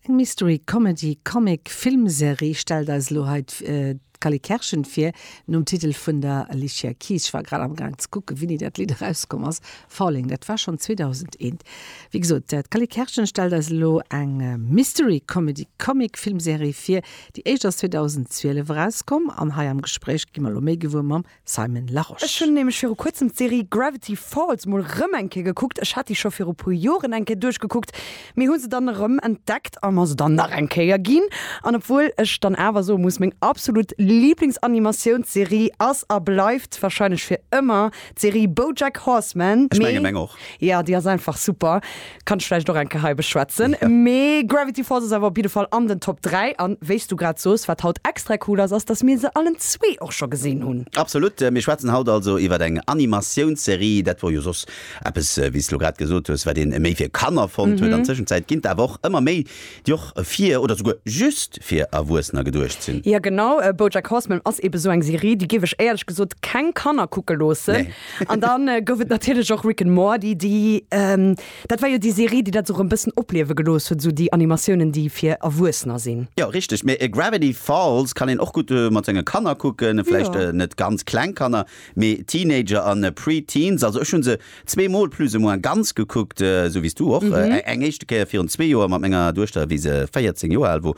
Eng Mystery-Comedy-Comic-Filmserie stellt eis elo hei d'Cally Kerschen vir, nom Titel vun der Alicia Keys. Ech war grad am Gaang ze kucken, wéini dat Lidd erauskomm ass, Falling, dat war schonn 2001. Wéi gesot, d'Cally Kerschen stellt eis elo eng Mystery-Comedy-Comic-Filmserie vir, déi éischt ass 2012 erauskomm, an hei am Gespréich gi mer elo méi gewuer mam Simon Larosche. Ech hunn nämlech viru kuerzem d'Serie Gravity Falls mol rëm eng Kéier gekuckt. Ech hat déi scho viru puer Joren eng Kéier duerchgekuckt, mee hu se dann erëm entdeckt a mer se dann nach eng Kéier ginn. An obwuel ech dann awer soe muss, meng absolut Liiblingsanimatiounsserie ass a bleift warscheinlech fir ëmmer d'Serie BoJack Horseman. Ech mengen meng och. Jo, déi ass einfach super. kann ech vläicht och eng Kéier hei beschwätzen. Mee Gravity Falls ass awer op jidde Fall an den Top 3. An wéi s du grad soos, wat haut extra cool ass, ass, datt mir se allen zwee och scho gesinn hunn. Absolut. Mir schwätzen haut also iwwer eng Animatiounsserie. Dat wor jo soss eppes, wéi s de lo grad gesot hues, wat ee méi fir Kanner fonnt huet. An Tëschenzäit ginn d'Awer och ëmmer méi Déi och fir oder souguer just fir Erwuessener geduecht sinn. Jo genau, Bojack Horseman ass eben esou eng Serie, déi géif ech éierlech gesot keng Kanner kucke loossen. Nee. An dann gouf et natierlech och Rick and Morty, déi, dat war jo déi Serie, déi dat esou erëm e bëssen opliewe gelooss huet, esou déi Animatiounen, déi fir Erwuessener sinn. Jo richteg, mee Gravity Falls kann een och gutt mat senge Kanner kucken, vläicht net ganz kleng Kanner, mee Teenager an Pre-Teens. Also ech hu se Zwee Mol plus ou moins ganz gekuckt, esou wéi s du och. Eng éischte Kéier virun zwee Joer mat menger Duechter, wéi se 14 Joer al wor,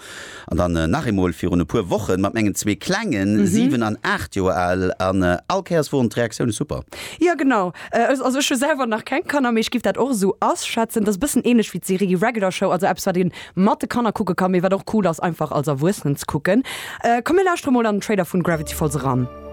an dann nach eemol virun e puer Wochen mat mengen zwee Klengen, 7 an 8 Joer al, an all Kéiers woren d'Reaktioune super. Jo genau, also ech hu selwer nach keng Kanner, mee ech giff dat och esou asschätzen. Et ass e bëssen ähnlech wéi d'Serie Regular Show, also eppes wat een mat de Kanner kucke kann, mee wat och cool ass einfach als Erwuessenen ze kucken. Komm mir lauschtere mol an den Trailer vun Gravity Falls eran.